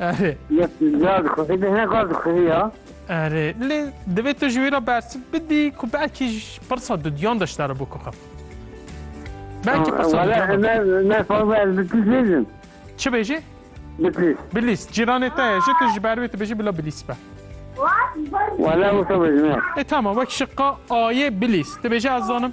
Erê. Yes, ya dixwî, di hin qas dixwî ya. Erê, lê divê tu ji wî re bersiv bidî ku belkî ji pirsa dudiyan de ji te re bû ku xif. Belkî pirsa Wala dudiyan de. me me fazla ez bi tîs nêzim. Çi bêjî? Bi tîs. Bilîs, cîranê te ye ji tu ji ber wê tu bêjî bila bilîs be. Wala wisa bêjim ya. E tamam, wek şiqa ayê bilîs. Tu bêjî ez zanim.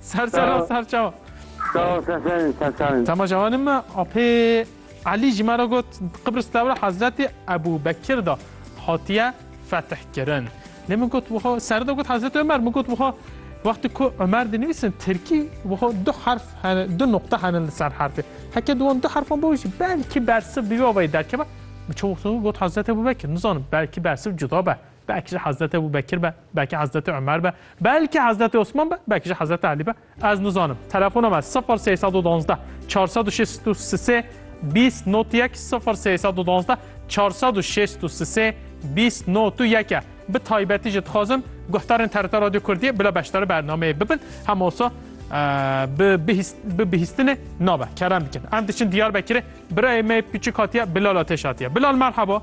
Ser sera ser çawa. Sağ ol sen senin sen senin. Tamam cavanım mı? Apê Ali ji me re got Qibris tewra Hazretê Ebu Bekir da hatiye fetih kirin. Lê min got wiha ser de got Hazretê Ömer min got wiha wextê ku Ömer dinivîsin Tirkî wiha du harf hene du nokta henin li ser harfê. Heke diwan du harfan bo jî belkî bersiv bi vê avayî derkeve. Min çawa got Hazretê Ebu Bekir nizanim belkî bersiv cuda be. Belkî ji Hezreti Ebû Bekir be, belkî Hezreti Umer be, belkî Hezreti Osman be, belkî jî Hezreti Elî be, ez nizanim. Telefona me sifir sey sed û duwazdeh çar sed û şêst û sisê bîst not yek sifir sey sed û duwazdeh çar sed û şêst û sisê bîst not û yek e. Bi taybetî jî dixwazim guhdarên TRT Radyo Kurdiyê bila beşdarî bernameyê bibin. Hema wisa bi bi bihîstinê nabe. Kerem dikin. Em diçin Diyarbekirê. Birayê me pîçik hatiye Bilal Ateş hatiye. Bilal merhaba.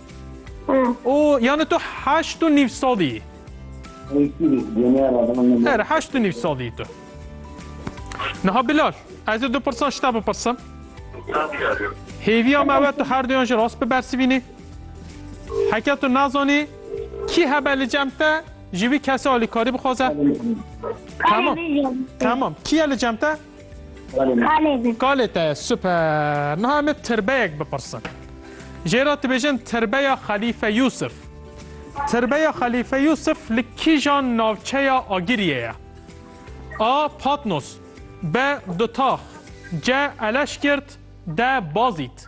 O yani tu heşt û nîv salî yî. Her heşt û nîv salî yî tu. Niha Bilal, ez ê du pirsan ji te bipirsim. Hêviya me we tu her duyan ji rast bibersivînî. Heke tu nazanî kî hebe li cem te ji wî kesê alîkarî bixwaze. Tamam. Tamam. Kî ye li cem te? Kalê me. Kalê te ye, super. Niha em ê tirbeyek bipirsin. Jê re dibêjin Tirbeya Xelîfe Yûsif. Tirbeya Xelîfe Yûsif li kîjan navçeya Agiriyê ye? A. Patnos B. Dutax C. Eleşkirt D. Bazît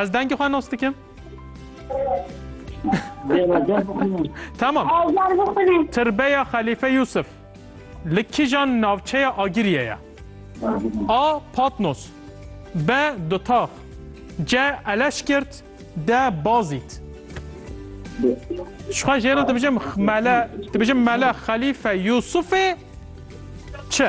Ez dengê xwe nas dikim. Tamam. Tirbeya Xelîfe Yusuf li kîjan navçeya Agiriyê ye? A. Patnos B. Dutax C. Eleşkirt D. Bazît Şixwe jêna dibijim mele dibijim mele Xelîfe Yusufê çi?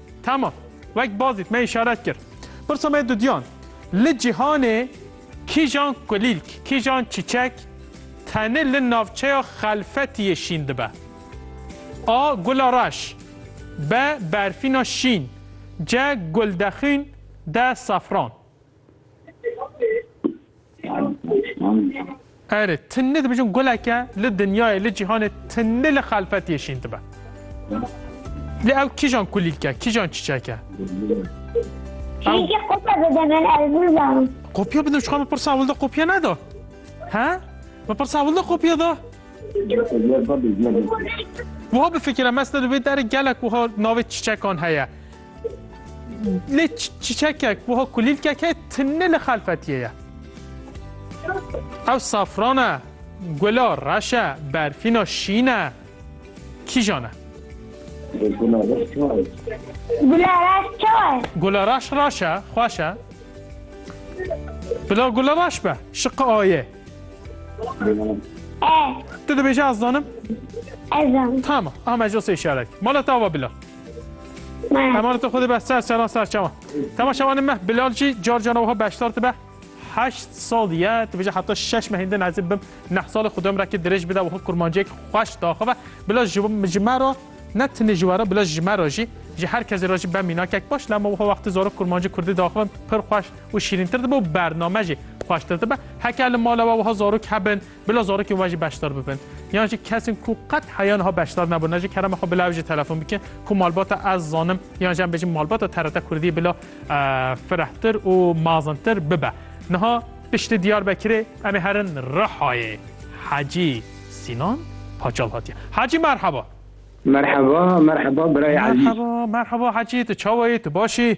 Tamam. Wek bazît me îşaret kir. Pirsa me dudiyan. Li cîhanê kîjan kulîlk, kîjan çîçek tenê li navçeya xelfetiyê şîn dibe? A. Gula reş B. Berfîna şîn C. Guldexûn D. Safran Erê tinni dibijin guleke li dinyayê li cîhanê tinni li xelfetiyê şîn dibe. Lê ew kîjan kulîlke, kîjan çiçek e? Çîçekê qopya bide min ez nizanim. Qopya bide çixa min pirsa ewil de qopya neda. He? Min pirsa ewil de qopya da. Wiha bifikire mes di wê derê gelek wiha navê çiçekan heye. Lê çiçekek wiha kulîlkek heye tune li xelfetiyê ye. Ew safran e, gula reş e, berfîna şîn e. Kîjan e? Gula reş çawa ye? Gula reş çawa ye? Gula reş reş e, xweş e. Bila gula reş be, şiqi ayê. E. Tu dibêje ez zanim? Ez zanim. Tamam, ama ez jo sê işaret. Mala tava bila. Eman tu xudi be ser seran ser çawan. Tema şewanê meh Bilal jî car cana wiha beşdar dibe. Heşt sal ye tu bêje heta şeş mehên din ezê bim neh salê xwe dom rekê dirêj bide wiha kurmanciyek xweş daxive. Bila ji ji me re ne tenê ji we re bila ji me re jî ji her kesê re jî be mînakek baş lema wiha wextê zarok kurmancî kurdî daxivin pir xweş û şîrîntir dibe û bername jî xweştir dibe. Heke li mala we wiha zarok hebin Bila zarokên we jî beşdar bibin. Yan jî kesên ku qet heya niha beşdar nebûn ne ji kerema xwe bila ew jî telefon bikin ku malbata ez zanim yan jî em bêjin malbata TRT Kurdî bila firehtir û mazintir bibe. Niha piştî Diyarbekirê em ê herin Rihayê. Hecî Sînan Paçal hatiye. Hecî merheba. Merheba, merheba birayê ezîz. Merheba, merheba hecî tu çawa yî, tu baş î?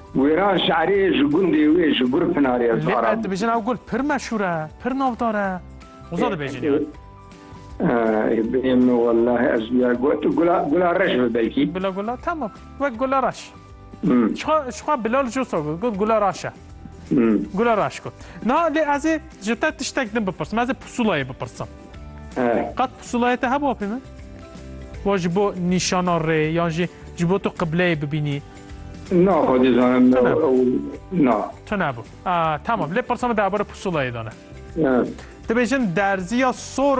Wêran şerê ji gundê wê ji Gul Pinar ye Lê me dibêjin ew gul pir meşhur e, pir navdar e. Hoza dibêjin yan? Ê bêyim min wellahî ez ya got gula gula reş bi belkî. Bila gula tamam wek gula reş. Şixa şixa Bilal Josa got got gula reş e. Gula reş got. Na lê ez ê ji te tiştek din bipirsim. Ez ê pusulayê bipirsim. Qet pusulayê te hebû apê min? Wa ji bo nîşana rê yan jî ji bo tu qibleyê bibînî. Na xwedî zanim na. Tu nebû. Tamam lê pirsa min derbarê pusulayê de ne. Dibêjin derziya sor